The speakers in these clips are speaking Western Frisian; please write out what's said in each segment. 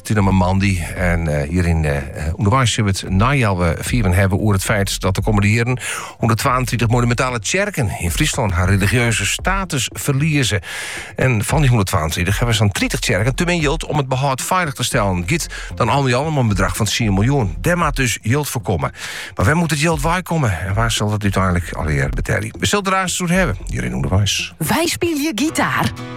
It is no mar moandei en hjir yn ûnderweis sil we it nei al fiven hawwe oer it feit dat de kommende jierren hûnderttwaentritich monumentale tsjerken yn Fryslân har religieuze status ferlieze. En fan dy hûnderttwaentritich hawwe sa'n tritich tsjerken te min jild om it behâld feilich te stellen. Giet dan al mei al om in bedrach fan tsien miljoen. Dêr moat dus jild foar komme. Mar wêr moat it jild wei komme en wa sil dat úteinlik allegear betelje? We sille der aanst oer hawwe hjir yn ûnderweis. Wy spylje gitaar.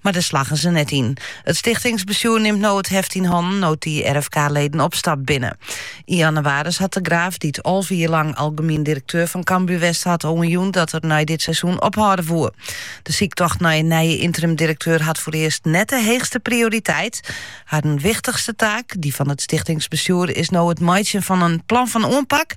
Mar dêr slaggen se net yn. It stichtingsbestjoer nimt no it heft yn hannen no't dy RvK-leden opstapt binne. Yn jannewaris hat De Graaf, dy't alve jier lang algemien direkteur fan Cambuur west hat, al oanjûn dat er nei dit seizoen ophâlde woe. De syktocht nei in nije ynterimdirekteur hat foarearst net de heechste prioriteit. Harren wichtichste taak, dy fan it stichtingsbestjoer, is no it meitsjen fan in plan fan oanpak.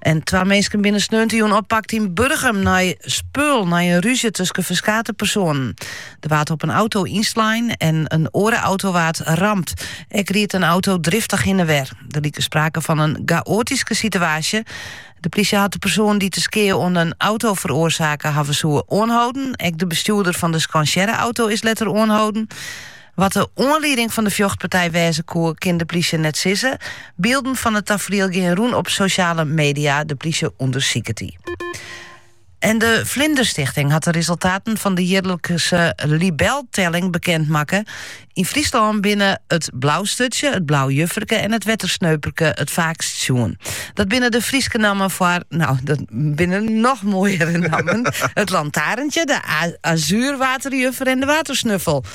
En twa minsken binne sneontejûn oppakt yn Burgum nei spul, nei in rúzje tusken ferskate personen. Er waard op in auto ynslein en in oare auto waard ramd. Ek ried in auto driftich hinne en wer. Der like sprake fan in chaotyske situaasje. De plysje hat de persoan dy't de skea oan in auto feroarsake hawwe soe oanhâlden. Ek de bestjoerder fan de skansearre auto is letter oanhâlden. Wat de oanlieding fan de fjochtpartij wêze koe, kin de plysje net sizze. Bylden fan it tafriel gean rûn op sosjale media. De plysje ûndersiket dy. De Vlinderstichting hat de resultaten fan de jierlikse libeltelling bekend makke. Yn Fryslân binne it Blaustutsje, it Blau Jufferke en it Wettersneuperke it faakst sjoen. Dat binne de Fryske nammen foar, nou, dat binne noch moaiere nammen, it Lantaarntje, de Azuurwaterjuffer en de Watersnuffel.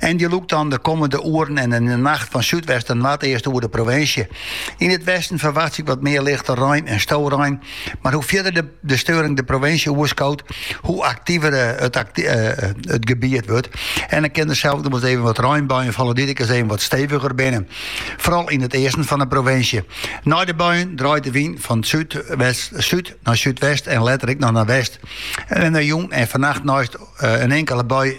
En dy lûkt dan de kommende oeren en yn 'e nacht fan súdwest nei noardeast oer de provinsje. Yn it westen ferwachtsje ik wat mear lichte rein en storein, mar hoe fierder de, de steuring de provinsje oerskoot, hoe aktiver eh, it, acti eh, eh, it gebiet wurdt. En dan kin der sels noch even wat reinbuien falle dy't ek ris even wat steviger binne. Foaral yn it easten fan de provinsje. Nei de buien draait de wyn fan súdwest, súd nei súdwest en letter ek noch nei west. En nei jûn en fannacht neist eh, in inkele bui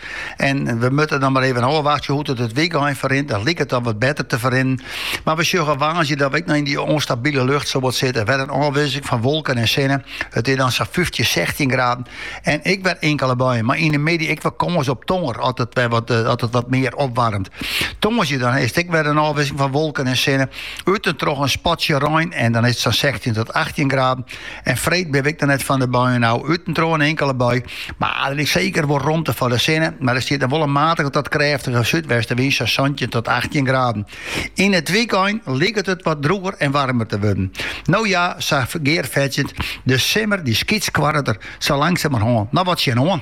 En we moatte dan mar even ôfwachtsje hoe't it it wykein ferrint. Dat liket dan wat better te ferrinnen. Mar we sjogge woansdei dat we ek noch yn dy ûnstabile lucht sawat sitte. Wer in ôfwisseling fan wolken en sinne. It is dan sa'n fyftjin, sechstjin graden en ek wer inkele buien. Mar yn 'e middei ek wer kâns op tongener as it wer wat as it wat mear opwaarmt. Tongersdei dan is it ek wer in ôfwisseling fan wolken en sinne. Út en troch in spatsje rein en dan is it sa'n sechstjin tot achttjin graden. En freed binne we ek net fan de buien ôf, út en troch in inkele bui. Mar der is seker wol romte foar de sinne, mar der stiet noch wol in matige tot krêftige súdwestenwyn, sa santjin tot achttjin graden. Yn it wykein liket it wat drûger en waarmer te wurden. No ja, sa gearfetsjend, de simmer dy skytskoarret der sa langsamerhân noch wat tsjinoan.